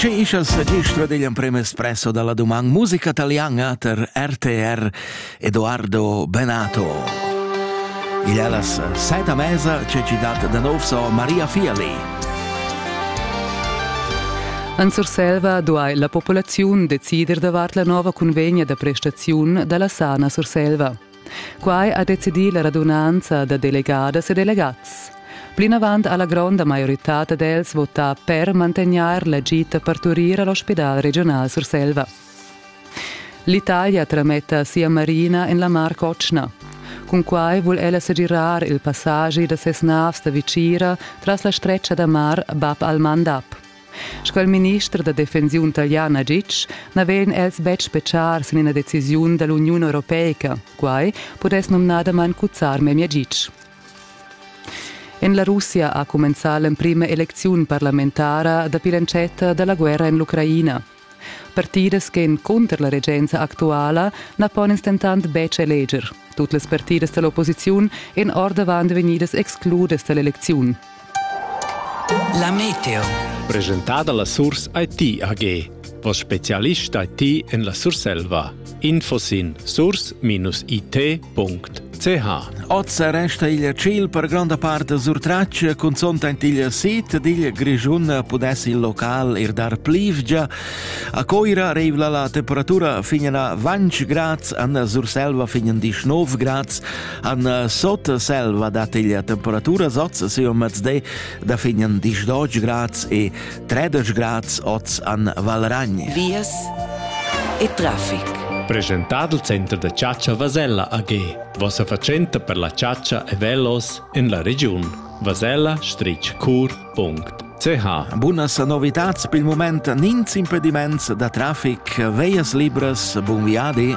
Sche ischas gestro degli emprem espresso dalla doman musica italiana ter RTR Edoardo Benato. Il allas seta mesa c'è citat da nov so Maria Fiali. En Surselva duai la populaziun decider davart la nova convegna da prestaziun dalla Sana Surselva. Quai ha decidì la radunanza da delegadas e delegats. Plinavant ha la gronda maioritad d'els votà per mantegnair la gita parturir all'ospidal regional Surselva. L'Italia trametta sia marina en la Mar Cotschna. Cun quai vul ella segirar il passagi da ses navs da vicira tras la stretga da mar Bab al-Mandab. Sco il minister da defensiun talian ha ditg, na vegn els betg spetgar sin ina decisiun da l'Uniun europeica. Quai pudess numnadamain cuzzar memia gitg. En la Russia ha cumenzà l'emprima elecziun parlamentara dapi l'entschatta da la guerra en l'Ucraina. Partidas ch'èn cunter la regenza actuala na pon ins dentant betg eleger. Tut las partidas da l'opposiziun èn ordavant vegnidas excludas da l'elecziun. La meteo. Presentada la Surs IT AG, voss spezialist IT en la Surselva. info sin source-it.ch Oz resta igl ciel per gronda part surtratg, cunzont ant igl sit digl Grischun pudess il local ir dar plivgia. A Coira reivla la temperatura finen a 20 grads, an Surselva finen di 9 grads, an Sotselva dat igl temperatura soz si o mezde da finen 12 grads e Tredeg grads oz an Valragn. Vias e traffic. Presentad il center da chatscha Vasella AG. Vossa fatschenta per la chatscha e velos en la regiun. vasella-cur.ch Bunas novitats per il moment nins impediments da traffic, veias libras, bun viadi!